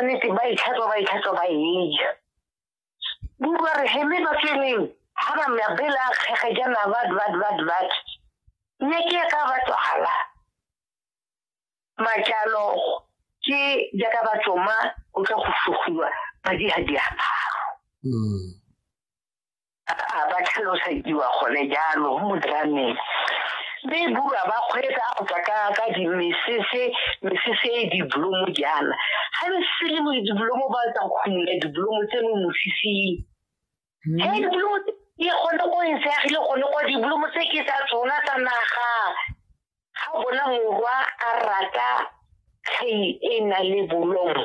nnete ba itlhatswa ba itlhatswa ba eja buba re heme ba tsweleng ha ba mabela a kgege jana bat bat bat bat ne ke ya ka batswala majalo ke jaaka batsoma o tla go sugiwa madi ga diaparo mm. a ba tlhalosediwa gone jalo mo drameng mme bua ba kgweetsa go tla ka ka dimesese mesese e diblomo jaana ga le sele mo diblomo ba tsa go khumula diblomo tse mo mosising hmm. he diblomo e gone go e seagile gone kwa diblomo tse ke tsa tsona tsa naga ga bona morwa a rata tlhei e na le bolomo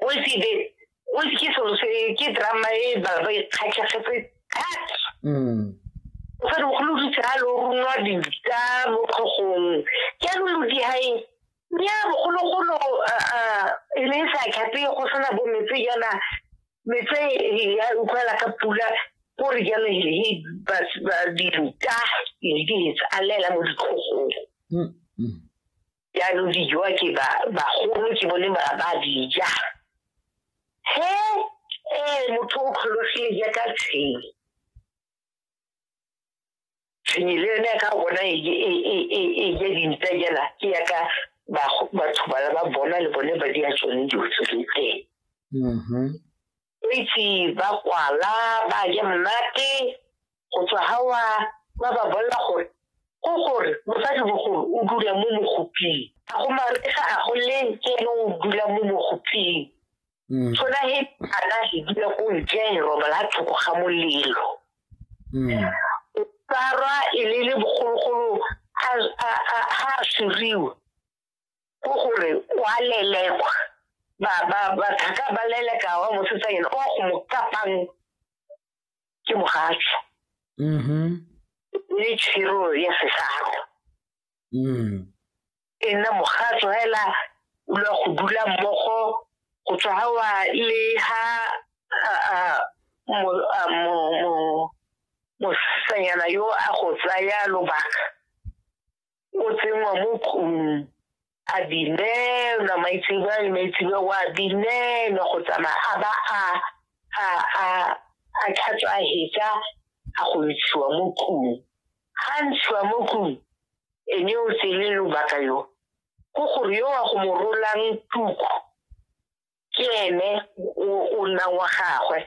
o se be o se ke selo se ke drama e ba ba ikgatlhegetse thata mm. o sa mogolo di tsa lo runwa di tsa mo khogong ke lo lo di hai ya mogolo golo a a e le sa khape go sona bo metse yana metse ya utlwala ka pula gore jalo he ba ba di tsa e di tsa alela mo dikhogong mm, mm. jaanong dijoa ke ba bagolo ke bone ba ba dija he ee motho o kgologile jaaka tshenyi tshenyi le yone ka bona e ja e, e, e, dintsa jana ke yaka batho ba ba bona le bone ba di a tsone dilo tse teng mm-hmm. Baitse ba kwala ba ja monate go tswa hawa ba ba bolela gore ko gore mosadi bogolo o dula mo mogoping a go maresa a go le ke ene o dula mo mogoping mm. tshona he ana he dula ko ntle he robala thoko ga molelo mm. o tsarwa e le le bogologolo ha a suriwa ko gore o a lelekwa bathaka ba leleka wa mosetsa ena o a go mo kapang ke mogatsho mm-hmm. le tshiro ya sesago mm. e nna mogatsho fela o lwa go dula mmogo go tswa ga wa le ha mosanyana yo a go tsaya lobaka o tsenngwa mo kgomong a binelwa maitsebwa le maitsebwa wa binelwa go tsamaya a ba a a a a tlhatswa a hetsa a go ntshiwa mo kgong ga ntshiwa mo kgong ene o tsele lobaka yo go gore yo wa go mo rolang tuku ke ene o nna wa gagwe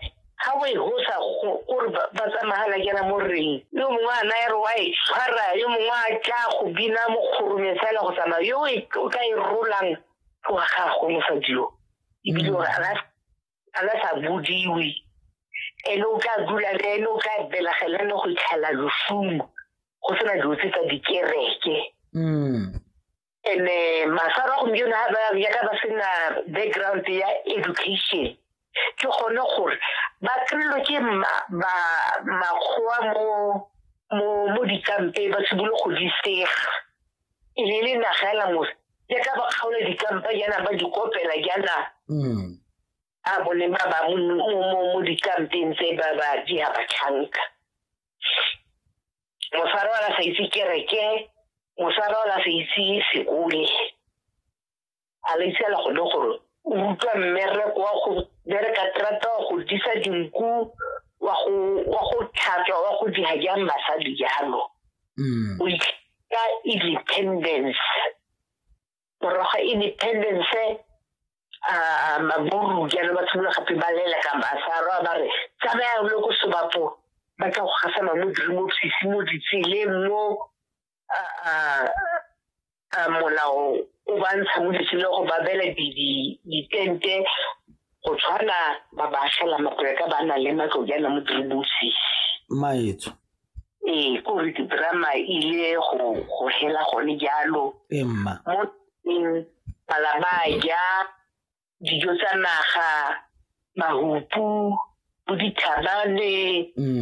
ga o e hosa gore ba tsamagala kena mo reng yo mongwe a naya re wa e tshwara yo mongwe a tla go bina mokgorume fela go tsamaya yo e, o ka e rolang wa gagwe mosadi yo ebile gore a na sa bodiwe ene o tla dula le ene o tla belegela ne go itlhela losumo go sena dilo tse tsa dikereke mm. and eh, masaro a gompieno ga ba yaka ba sena background ya education ke gone gore ba kry-lo ke makgowa mo dikampe ba sebole go di sega e le le naga ela mose ya ka ba kgaola dikampa jaana ba di kopela jaana mm. a bone ba ba mo dikampeng tse ba ba di ha ba tlhanka mosadi wa la sa itse kereke mosadi wa la sa itse sekole a le itse la gone gore o utlwa mmereko wa go bereka terata wa go disa dinku wa go tlhatswa wa go diga jang basadi jalo mm. o ka independence moroga independence a maburu jaanong ba tshimolola gape ba lela ka masaro a ba re tsamaya le ko sobapo ba tla go gasa mamo dirimo sisi mo ditseleng mo molao o ba ntsha mo ditseleng go ba bela ditente go tshwana ba ba fela mapoleka ba na le matlo jaana mo dirimo sisi maetso ee ko re drama ile go go hela gone jalo emma mo teng bala ba ja dijo tsa naga mahupu bo dithabane mm.